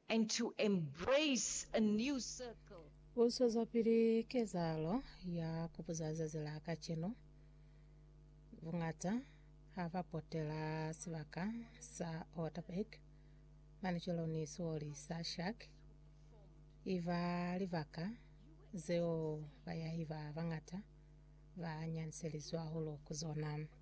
and to embrace a new circle. U zwezapili kezahalo ya ku buza zazi la kacenu. Buñata ha ba potela sibaka sa Waterberg, mane cwalo ni sioli sa Shark, i ba libaka zeo bayaiba bañata ba nyanselizwa hahulu ku zona.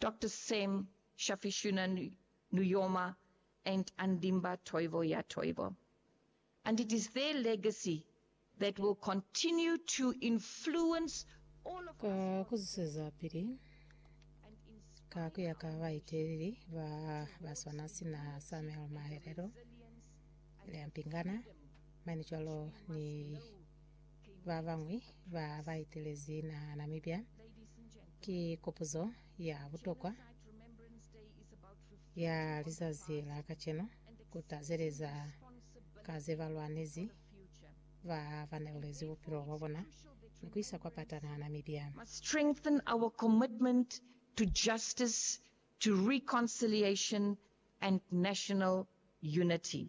Doctor Sam Shafishuna Nujoma and Andimba Toivo Ya Toivo and it is their legacy that will continue to influence all of Ka us ku zwezapili and ka ku inspire ya ka our baeteleli ba ba swana sina Samuel Mahelelo, Leampingana, mane cwalo ni ba bañwi ba ba etelezi naha Namibia ki kopuzo ya butokwa ya lizazi la kacenu ku tazeleza ka ze ba lwanezi ba ba neulezi bupilo bwa bona ni ku isa kwa pata naha Namibia. must strengthen our commitment to justice, to reconciliation and national unity.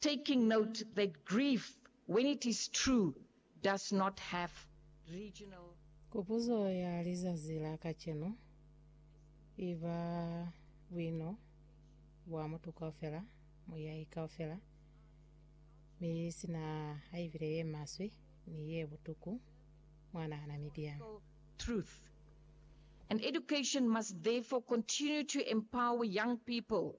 taking note that grief when it is true does not have regional. Kupuzo ya lizazi la kacenu i ba, Buino bwa mutu kaufela, muyahi kaufela, mi sina haibile ye maswe ni ye butuku, mwa nahana mi byang? truth, and education must therefore continue to empower young people